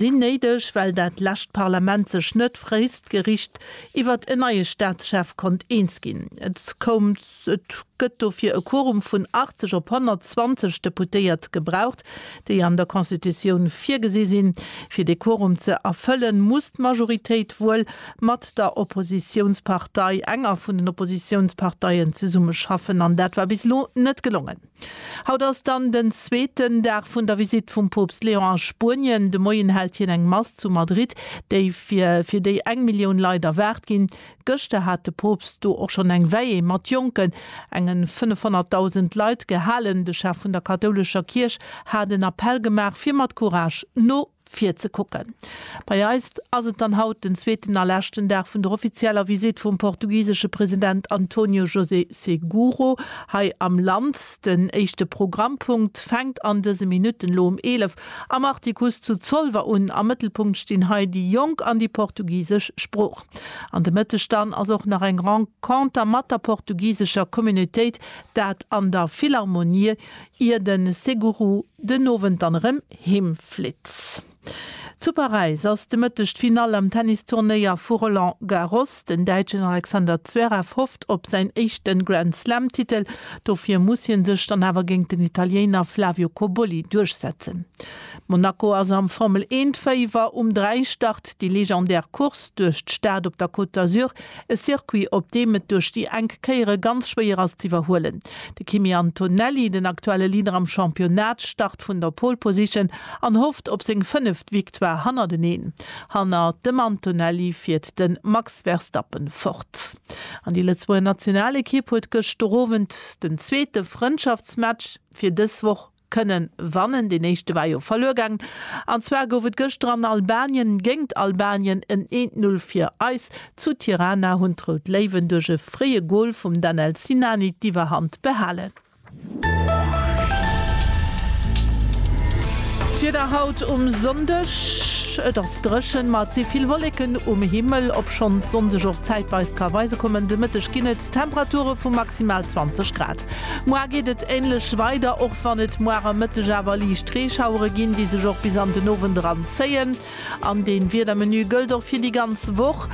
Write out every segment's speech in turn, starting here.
sinn néideg, well dat lescht Parlament sech net fréistgericht iwwert en neie Staatschef konnt eens ginn. Et koum, et gëtt dofir e Quorum vun 80 op 120 Deputéiert gebraucht, déi an der Constitutioun virgesi sinn. Fir dee Quorum ze erfëllen, muss d'Majoritéit wuel mat der Oppositiounspartei, enger vun den Oppositiounsparteien, zesummeschaffen, an dat war bis elo net gelongen. Haut ass dann den zweeten Dag vun der Visitt vum Poopst Leon a Spuenien. De Moien hält hien eng Mass zu Madrid, déi fir fir déi eng Millioun Leit erwaart ginn. Gëschter hat de Poopst do och schonn eng Veillée mat jonken, enge 500.000 Leit gehalen. De Chef vun der kathoulescher Kierch hat en Appell gemaach, fir mat Courage no. Fir ze kucken. Bei eis ass et dann haut den zweeten a leschten Dag vun der offizieller Visitt vum portugisesche President António José Seguro hei am Land. Den éischte Programmpunkt fänkt an dëse Minutten, elo um 11, am Artikuss zu Zolwer un. Am Mëttelpunkt stinn hei déi Jonk an déi portugisesch Sprooch. An de Mëtteg dann ass och nach eng Renconter mat der portugisescher Communautéit, dat an der Philharmonie, ier de Seguro den Owend dann erëm heem flitt. Zu Paräis ass de Mëtteg d'Finall am Tennisturnéier vu Roland Garros. Den Däitschen Alexander Zverev hofft op säin éischte Grand Slam-Titel. Dofir muss hie sech dann awer géint den Italiéiner Flavio Cobolli duerchsetzen. Monaco ass am Formel-Eent-Féiwer. Um 3 start déi legendär Course duerch d'Stad op der Côte d'Azur, e Circuit, op deem et duerch déi enk Kéiere ganz schwéier ass z'iwwerhuelen. De Kimi Antonelli, den aktuelle Leader am Championnat, start vun der Pole Position an hofft op seng fënneft Victoire hannerteneen. Hanner dem Antonelli fiert de Max Verstappen fort. An déi Lëtzebuerger Nationalekipp huet gëschter Owend den zweete Frëndschaftsmatch fir dës Woch kënnen wannen. Deen éischte war jo verluer gaangen, an zwar gouf et gëschter an Albanien géingt Albanien en 1, 0 fir eis. Zu Tirana hunn d'Rout Léiwen duerch e fréie Gol vum Danel Sinani d'Iwwerhand behalen. D'Wieder haut um Sonndeg, Et ass dréchen, ma et si vill Wolleken um Himmel, obschonn d'Sonn sech och zäitweis ka weise kommen. De Mëtteg ginn et. Temperature vu maximal 20 Grad. Muar geet et änlech weider, och wann et muar am Mëtteg awer liicht Reeschauere ginn, déi sech och bis an den Owend eran zéien. An dee Wiedermenu gëllt och fir déi ganz Woch,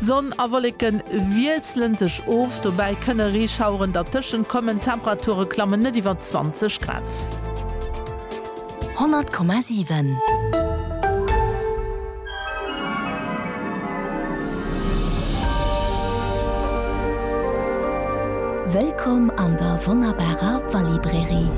Sonn a Wolleke wiessle sech of, dobäi kënne Reeschaueren dertëschent kommen. D'Temperature klammen net iwwer 20 Grad. 100,7. Wëllkomm an der wonnerbarer Wallibrairie!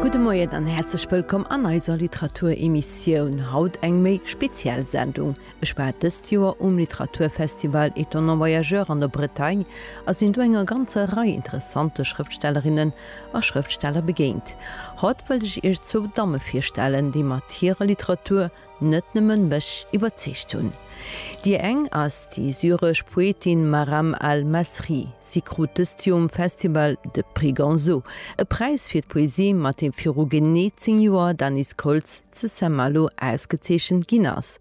Gudde Moien an häerzlech wëllkomm an eiser Literatur-Emissioun. Haut eng méi speziell Sendung. Ech war dëst Joer um Literaturfestival Étonnants voyageurs an der Bretagne a sinn do enger ganzer Rei interessante Schrëftstellerinnen a Schrëftsteller begéint. Haut wëllt ech Iech zwou Damme virstellen, déi mat hirer Literatur net nëmmen mech iwwerzeegt hunn. Déi eng ass déi syresch Poetin Maram al-Masri. Si krut dëst Joer um Festival de Prix Gonzo, e Präis fir d'Poesie, mat deem viru genee zéng Joer d'Anis Koltz, zu Saint-Malo ausgezeechent ginn ass,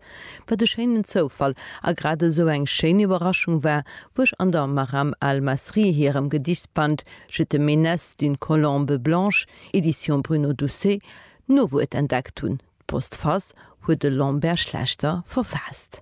wat e schéinen Zoufall a grad esou eng schéin Iwwerraschung war, wou ech an der Maram al-Masri hirem Gedichsband Je te menace d'une colombe blanche, Edition Bruno Doucet, d'Nowuert entdeckt hunn, D'Postface huet de Lambert Schlechter verfaasst.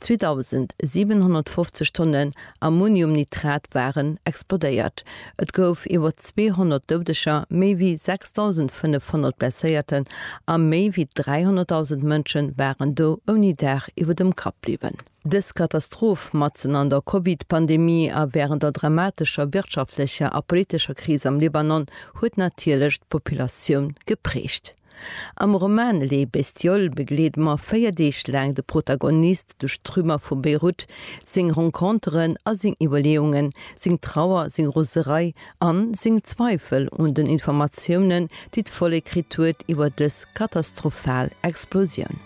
2.750 Tonnen Ammoniumnitrat waren explodéiert. Et gouf iwwer 200 Doudeger, méi wéi 6.500 Blesséierten a méi wéi 300.000 Mënsche waren do ouni Daach iwwer dem Kapp bliwwen. Dës Katastroph, matzen an der Covid-Pandemie a wärend der dramatescher wirtschaftlecher a politescher Kris am Libanon, huet natierlech d'Populatioun geprägt. Am Roman Les Bestioles begleede mer véier Deeg laang de Protagonist duerch d'Trümmer vu Beirut, seng Renconteren a seng Iwwerleeungen, seng Trauer, seng Roserei a seng Zweifel un den Informatiounen, déi d'Vollek kritt huet iwwer dës katastrophal Explosioun.